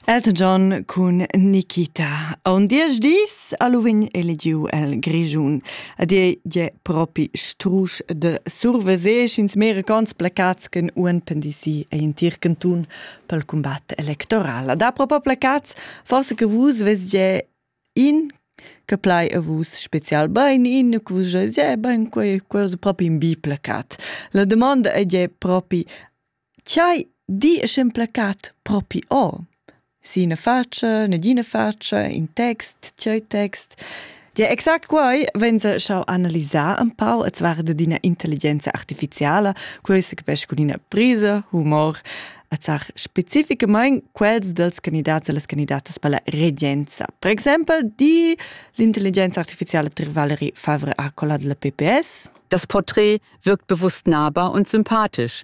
Elton cun Nikita. A un diesch dis Halloween eligiu el Grischun. Ad ei je propi strusch de surveser sch'ins mericons placats chen un pendisi ei in tir cantun pel combat electoral. Da propo placats, forse che vus ves je in che plai a vus special bain in che vus je je bain quei quei propi in bi placat. La domanda è je propi Ch'ei di e sch'emplacat propi o. S'ina fatscha, negina fatscha, in text, tgei text. Gia exact quei vegn schau analisar empau e svarda d'ina intelligenza artificiala, quei secapescha cun ina prisa, humor, e zar specificamein quels dals candidats e las candidatas per la regenza. Per exempel di l'intelligenza artificiala Tr Valerie Favre a quella della PPS. Das Porträt wirkt bewusst nahbar und sympathisch.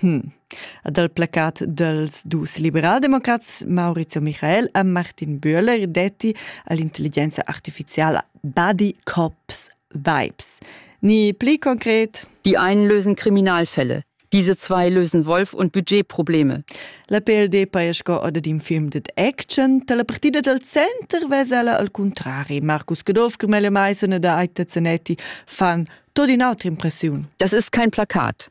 Hm. Ed al placat dals dus liberaldemocrats Maurizio Michael e Martin Bühler detti a l'intelligenza artifiziala Buddy Cops Vibes. Ni pli konkret. Die einen lösen Kriminalfälle. Diese zwei lösen Wolf- und Budgetprobleme. La PLD paia sco oda d'in film ded action. Dalla partida dal center vesela al contrari. Marcus Caduff, Carmela Maison e da Aita Zanetti fan tot in autra impressiun. Das ist kein Plakat.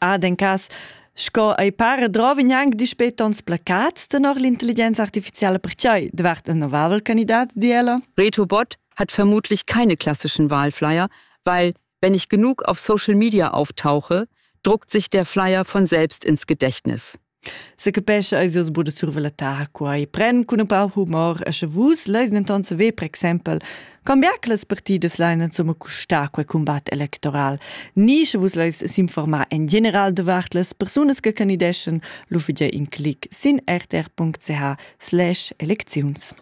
Ad en cas sco ei para drovin anc dispei tons placats tenor l'intelligenza artificiala pertgei davart ein novavel candidat di ella. Reto Bott hat vermutlich keine klassischen Wahlflyer, weil wenn ich genug auf Social Media auftauche, druckt sich der Flyer von selbst ins Gedächtnis. Secapescha eis jeu buca surver la ta quai pren cun un pau humor e sche vus leis denton saver per exempel cambiar che las partidas lein insomma custar quei combat electoral ni sche vus leis s'informar en general davart las persunas che candideschen lu fidei in clic sin rtr.ch slash elecziuns.